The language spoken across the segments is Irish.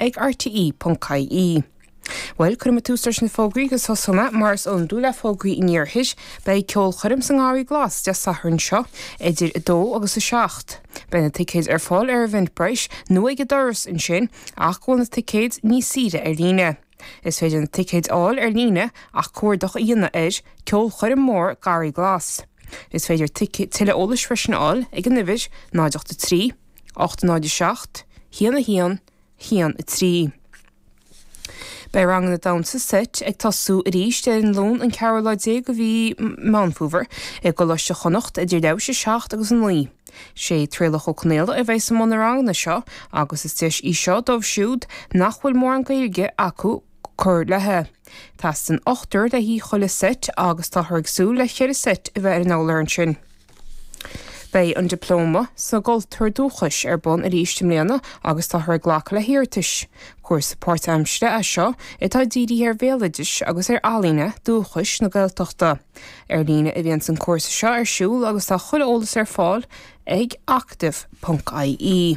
ag RTÉ ponc ie. Bhuel, cuirfidh mé tús leis na fógraí go Sasana, mar is iondúil le fógraí an Iarthair. Beidh ceolchoirm sa nGarraí Glas Dé Sathairn seo, idir 2 agus 7. Beidh na ticéid ar fáil ar Eventbrite nó ag an doras ansin, ach go bhfuil na ticéid níos saoire ar líne. Is féidir na ticéid a fháil ar líne ach cuardach a dhéanamh ar, Ceolchoirm Mór Garraí Glas. Is féidir tuilleadh eolais freisin a fháil ag an uimhir, 083. 807 1113 Beidh ranganna damhsa seit ag tosú arís ar an Luan an 14ú lá de mhí Meán Fómhair i gColáiste Chonnacht idir leathuair tar éis 7 agus 9. Sé Traolach Ó Conaola a bheas i mbun na ranganna seo agus is deis í seo dóibh siúd nach bhfuil mórán Gaeilge acu cur léithi. Teastaíonn ochtar le haghaidh chuile seit agus táthar ag súil le cheithre seit a bheith ar an urlár ansin. Beidh an Diplóma sa gCultúr Dúchais ar bun arís i mbliana agus táthar ag glacadh le hiarratais. Cúrsa páirtaimsire é seo atá dírithe ar bhéaloideas agus ar ealaíona dúchais na Gaeltachta. Ar líne a bhíonns an cúrsa seo ar siúl agus tá chuile eolas ar fáil ag acadamh.ie.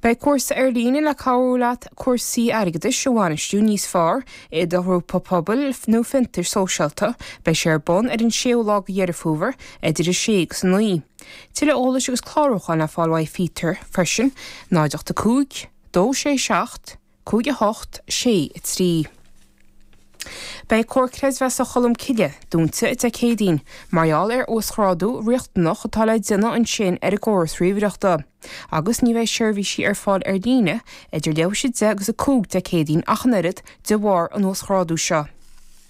Beidh cúrsa ar líne le cabhrú leat cúrsaí airgeadais a bhainistiú níos fearr i do ghrúpa pobail nó fiontair sóisialta. Beidh sé ar bun ar an 6ú lá de Dheireadh Fómhair idir 6 agus 9. Tuilleadh eolais agus clárúcháin le fáil uaidh Peter freisin, 085 267 5 8 6 3 Beidh Comhar Creidmheasa Cholm Cille dúnta Dé Céadaoin mar gheall ar uasghrádú riachtanach atá le déanamh ansin ar an gcóras ríomhaireachta agus ní bheidh seirbhísí ar fáil ar líne idir leathuair tar éis a deich agus a cúig Dé Céadaoin ach an oiread de bharr an uasghrádú seo.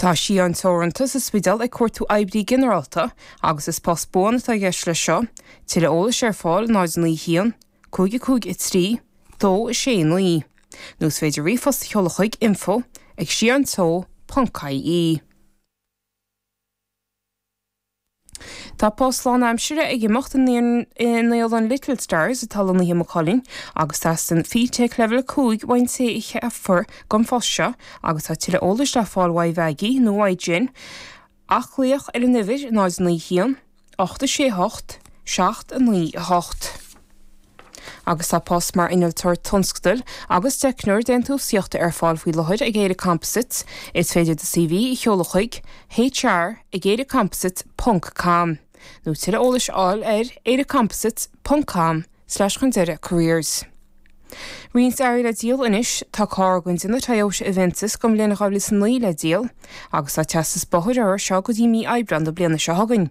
Tá Sidheán Teoranta sa Spidéal ag cuartú Oibrí Ginearálta agus is post buan atá i gceist leis seo, tuilleadh eolais ar fáil 091 553 269 nó is féidir ríomhphost a sheoladh chuig, info ag sidheanteo ponc ie. Tá post lánaimsire ag imeacht i naíolann Little Stars atá lonnaithe i Maigh Cuilinn agus teastaíonn FETAC Leibhéal 5 uaidh an té a cheapfar don phost seo agus tá tuilleadh eolais le fáil uaidh Mheaigí nó uaidh Jen ach glaoch ar an uimhir 091 868 79 8. Agus tá post mar Innealtóir Tionscadail agus Teicneoir Déantúsaíochta ar fáil faoi láthair ag Éire Composites, is féidir do CV a sheoladh chuig, hr ag éirecomposites ponc com, nó tuilleadh eolais a fháil ar, éirecomposites ponc com slash chun deireadh careers. Roinnt earraí le díol anois, Tá carr den déanamh Toyota Avensis den bhliain 2009 le díol, agus tá teastas bóthair uirthi seo go dtí mí Aibreán na bliana seo chugainn.